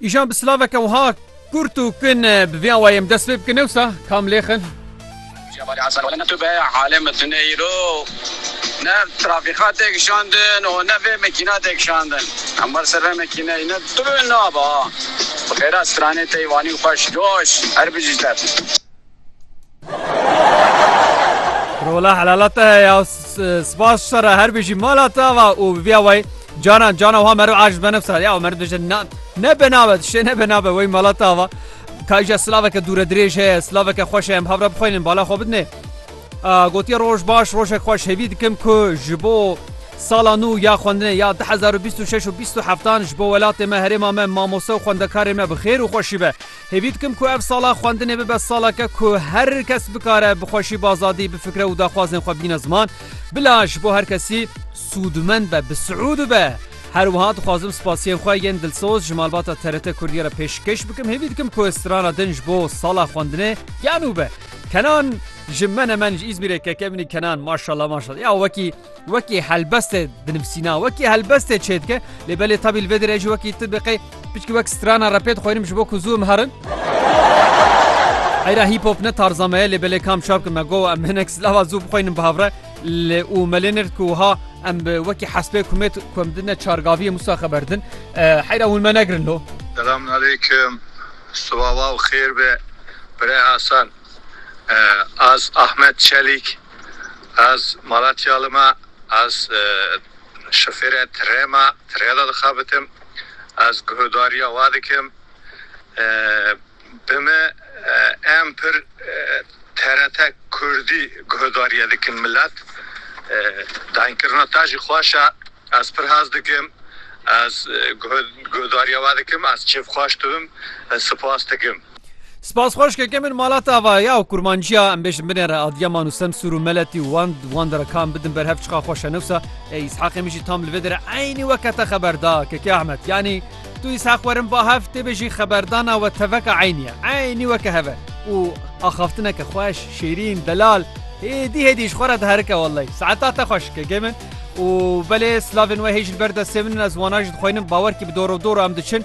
Îjan bi silaveke wiha kurt û kin bi vê awayê em dest pê bikin newsa kam lêxin. Tu be alê min tu ne îro ne trafîka tê kişandin û ne vê mekîna tê kişandin. Em ber ser vê mekîneyê ne tu bi min nabe ha. Bi xêra stranê tey vanî xweş coş her bijî tev. Rola helala te ya spas sara her bêjî mala te va û viya way canan cana wa meru aciz benef sara ya meru dije na ne benavet şe ne benavet way mala te va kayja slaveke dûre dirêj heye slaveke xweş em havra bixwînin bala xwe bidne gotiye roj baş rojek xweş hêvî dikim ku ji bo sala nû ya xwendinê ya 2026 û 20 heftan ji bo welatê me herêma me mamoste û xwendekarê me bi xêr û xweşî be Hêvî dikim ku ev sala xwendinê bibe saleke ku her kes bikare bi xweşî bi azadî bifikre û daxwazên xwe bîne ziman. Bila ji bo her kesî sûdmend be, bi siûd be. Her wiha dixwazim spasiyên xwe yên dilsoz ji malbata TRT Kurdiyê re pêşkêş bikim. Hêvî dikim ku strana din ji bo sala xwendinê ya nû be. Kenan ji menemen ji Îzmîrê keke min î Kenan maşallah maşallah ya wekî. Wekî helbestê dinivîsîna wekî helbestê çêdike lê belê tabî li vê dirê jî wekî tu biqê pişkî wek strana repê dixwenim ji bo ku zû em herin. Eyra hîp hop ne tarza me ye lê belê kam şap me go em hinek silava zû bixwenim bi havre li û melê nir ku ha em wekî hespê kumêt ku em dine çargaviyê musa xeber din heyra hûn me negirin lo. Selamun aleykum sibawa û xêr be Birê Hasan Ez Ahmet Çelîk Ez Malatyalı me, ez şofêrê tirê me, tirê de dixebitim, ez guhdarîya we dikim. Bi min em pir TRT Kurdî guhdarîye dikin milet. Dayînkirina te jî xweş e, ez pir hez dikim, ez guhdarîya we dikim, ez kêfxweş dibim, spas dikim. Spas xweş keke min malat ava ya û kurmanciya em bêjin binê re Adiyaman û Semsûr û Meletî û wan wan de re kam bidin ber hev çiqa xweş e newsa ê Îshaqê min jî tam li vê de re eynî weke te xeber da keke Ahmet yanî tu Îshaq werin va hev tê bêjî xeberdana we teveka eynî ye eynî weke hev e û axaftineke xweş şêrîn delal hêdî hêdî ji xwe re diherike wellay saeta te xweş keke min û belê silavên we hê jil ber destê min ez wana jî dixwînim bawer kî bi doro doro em diçin